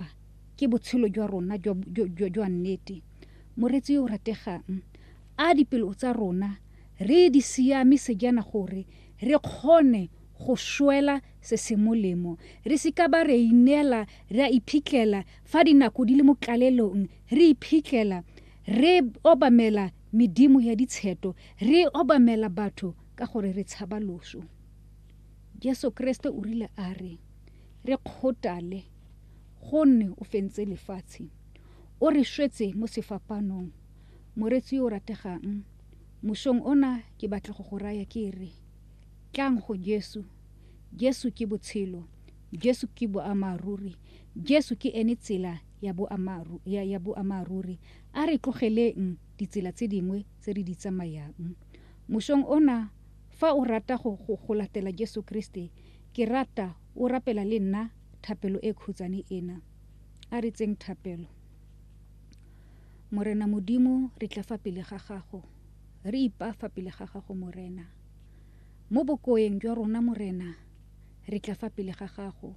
Jehofa ke botshelo jwa rona jwa nnete. Moreetsi yo o rategang, a dipelo tsa rona re di siamise jaana gore re kgone go swela se se molemo, re se ka ba ra ineela ra iphitlhela fa dinako di le mo tlalelong re iphitlhela re obamela medimo ya ditsheto, re obamela batho ka gore re tshaba loso. Jesu Keresete o rile a re re kgothale. Gonne o fentse lefatshe. O re shwetse mo sefapaanong. Moreetsi yo o rategang, mosong ona ke batla go go raya ke re, Tlang go Jesu. Jesu ke Botshelo. Jesu ke Boammaaruri. Jesu ke ene Tsela ya ya Boammaaruri. A re tlogeleng ditsela tse dingwe tse re di tsamayang. Mosong ona, fa o rata go go latela Jesu Keresete, ke rata o rapela le nna thapelo e khutsane ena. A re tseng thapelo. Morena Modimo, re tla fa pele ga Gago, re ipa fa pele ga Gago, Morena. Mo bokoeng jwa rona, Morena, re tla fa pele ga Gago.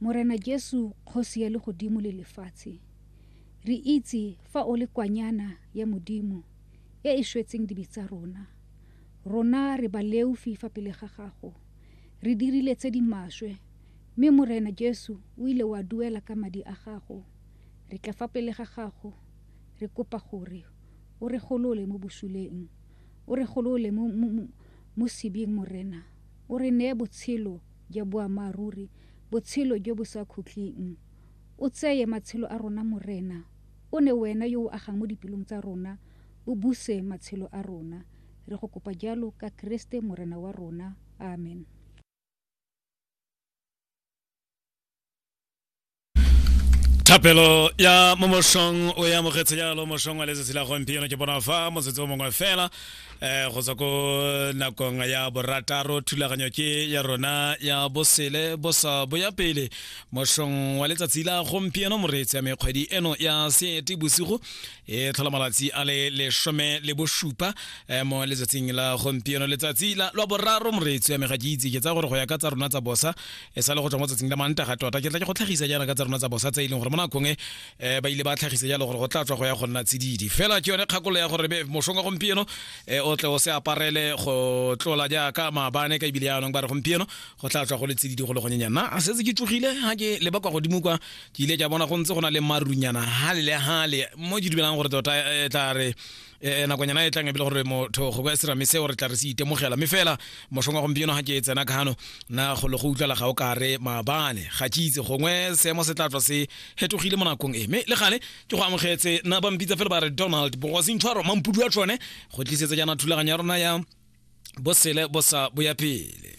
Morena Jesu, Kgosi ya legodimo le lefatshe, re itse fa O le kwanyana ya Modimo e e shwetseng dibe tsa rona. Rona re baleufi fa pele ga Gago. Re dirile tse di maswe, mme Morena Jesu o ile wa duela ka madi a gago. Re tla fa pele ga gago, re kopa gore o re golole mo bosuleng. O re golole mo, mo, mo, mo sebing, Morena. O re neye botshelo ja boammaaruri, botshelo jo bo sa khutleng. O tseye matshelo a rona, Morena. O ne Wena yo o agang mo dipelong tsa rona, o buse matshelo a rona. Re go kopa jalo ka Keresete Morena wa rona. Amen. thapelo ya mo mošong o e amogetse jalo mošong wa letsatsi la gompieno ke bona fa motsetse o mongwe fela um go tswa ko nakong ya borataro thulaganyo ke ya rona ya bosele bosa boya pele mošong wa letsatsi la gompieno moreetsi ya mekgwedi eno ya seete bosigo e tlhola malatsi a le lesome le bosupa eh, mo letsatsing la gompieno letsatsi la lwa boraro moreetsi ya mega ke itse ke tsa gore go ya ka tsa rona tsa bosa e sa le go tswa mo tsatsing la manta ga tota ke tla ke go tlhagisa jaana ka tsa rona tsa bosa tse e leng gore mo nakong e eh, ba ile ba tlhagisa jalo gore go tla tswa go ya go nna tsididi fela ke yone kgakolo ya gore mosong wa gompieno eh, o tle o se aparele go tlola jaaka maabane ka ebile yaanong ba re gompieno go tla tswa go le tsididi go le gonyenyana a setse ke tsogile ga ke leba kwa godimo kwa ke ile ka bona go ntse go na le marunyana hale le hale mo ke dumelang gore tota e tla re eh, nakonyana e tlang ebile gore motho go kwa serame seo re tla re se itemogela mme fela mošong wa gompieno ga ke e tsena kano na go le go utlwala ga o ka re maabane ga ke itse gongwe seemo se tla tswa se hetogile mo nakong e mme le gale ke go amogetse na ba mpitsa fela ba re donald bogosintshwaro mampudu wa tsone go tlisetsa jaana thulaganyo ya rona ya bosele bosa boya pele